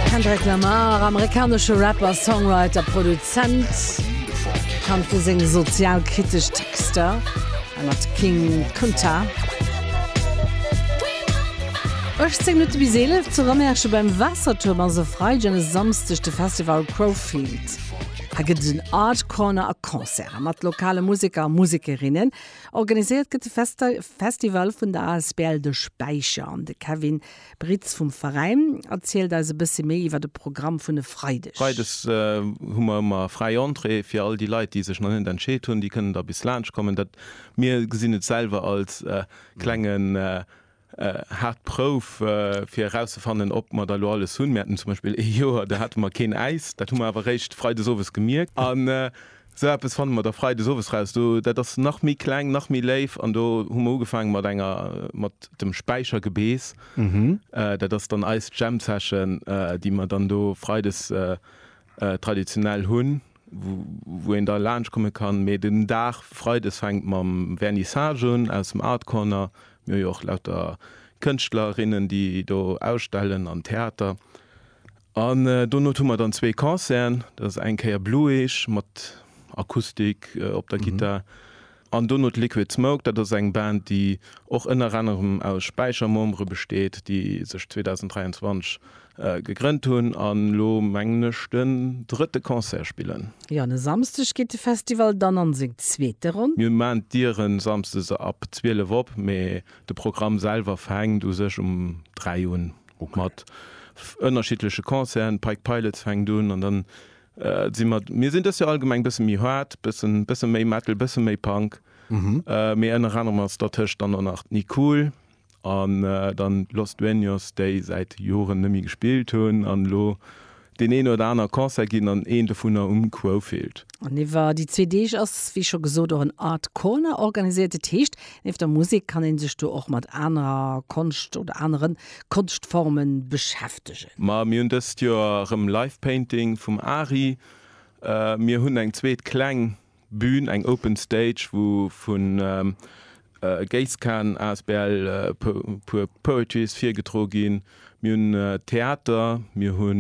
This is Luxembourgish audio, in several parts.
Kendrick Lamar, amerikanesche Rapper, Songwriter, Produzent, bekannt fir seng sozialkritesch Texter, hei mat King Kunta. 18 Minutte bis 11 zu Remerschen beim Waassertuerm ass e Freideg an e Samsdeg de Festival Crowfield. Hei gëtt et en Art Corner a Concerten mat lokale Museker a Musekerinnen. Organiséiert gëtt de Festival vun der asbl De Späicher an de Kevin Britz vum Veräin erzielt eis e bësse méi iwwer de Programm vun e Freideg. Freides hu mer ëmmer fräi Entrée fir all déi Leit, déi sech nach net entscheet hunn. Déi kënnen da bis laanscht kommen. Dat, mir gesinn et selwer als klengen haart Prouf, fir erauszefannen, ob mer da elo alles hunn. Mir haten zum Beispill ee Joer, do hate mer keen Äis. Dat hu mer awer eréischt Freides owes gemierkt. Sou eppes fanne mer da freides owes raus. Do, dat ass nach méi kleng, nach méi léif. An do hu mer ugefaange mat enger, mat dem Späichergebeess. Dat ass dann eis Jam Session, déi mer dann do freides traditionell hunn, wou een da laanscht komme kann. Mee den Dag freides fänkt mam Vernissage un aus dem Art Corner. Mir hu jo och lauter Kënschtlerinnen, déi do ausstellen, an Theater. An donot hu mer dann zwee Concerten, dat ass eng Kéier Blueage mat Akustik op der Gittar an donot Liquid Smoke, dat ass eng Band, déi och ënner anerem aus Späicher-Membere besteet, déi sech 2023 gegrënnt hunn an elo mengen ech den drëtte Concert spillen. Jo, an e Samsdeg geet de Festival dann an seng zweete Ronn. Mir maachen d'Dieren samsdes ab 12 op, mee de Programm selwer fänkt u sech um 3 un. mat ënnerschiddleche Concerten, d'Pike Pilots fänkt un an dann si mer, mir sinn dës Joer allgemeng bësse méi hard, bëssen bësse méi Metal, bësse méi Punk, mee ënner anerem ass dertëscht dann och nach d'Nicool an dann Los Dueños, déi säit Joren net méi gespillt hunn an elo Deen een oder aner Concert ginn an een dovunner um Quofield. An iwwer déi zwee Deeg ass wéi scho gesot och en Art Corner organiséiert. Dat heescht, nieft der Musek kann ee sech do och mat anerer Konscht oder anere Konschtforme beschäftegen. Ma mir hunn dëst Joer erëm Live Painting vum Ari. Mir hunn eng zweet kleng Bühn, eng Open Stage, wou vu Geiskan asbl puer Poetries virgedro ginn. Mir hunn Theater, mir hu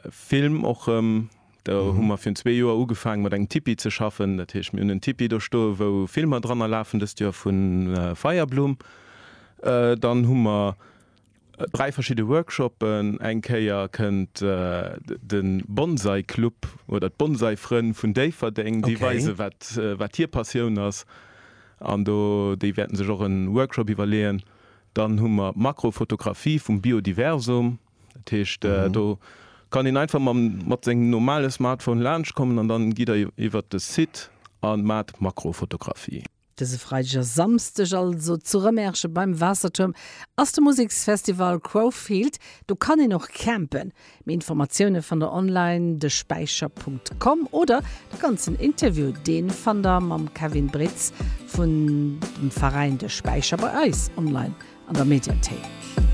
Film och rëm. Do hu mer virun zwee Joer ugefaange mat engem Tipi ze schaffen. Dat heescht, mir hunn en Tipi do stoe wou Filmer dranner lafen, dëst Joer vu Feierblumm. Dann hu mer Dräi verschidde Workshoppen, eng Kéier kënnt de Bonsai Club oder d'Bonsai Frënn vun Déifferdeng, déi weise wat hir Passioun ass an do déi wäerten sech och e Workshop iwwerleeën. Dann hu mer d'Makrofotografie vum Biodiversum, dat heescht do kann een einfach mat sengem normale Smartphone laanscht kommen an dann gitt der iwwert de Site a maacht Makrofotografie. Dëse Freideg a Samsdeg also zu Rëmerschen beim Waassertuerm ass de Museksfestival Crowfield. Do kann een och campen. Méi Informatioune fannt der online, despäicher Punkt com, oder de ganzen Interview deen fannt der mam Kevin Britz vun dem Veräin De Späicher bei eis online an der Mediathéik.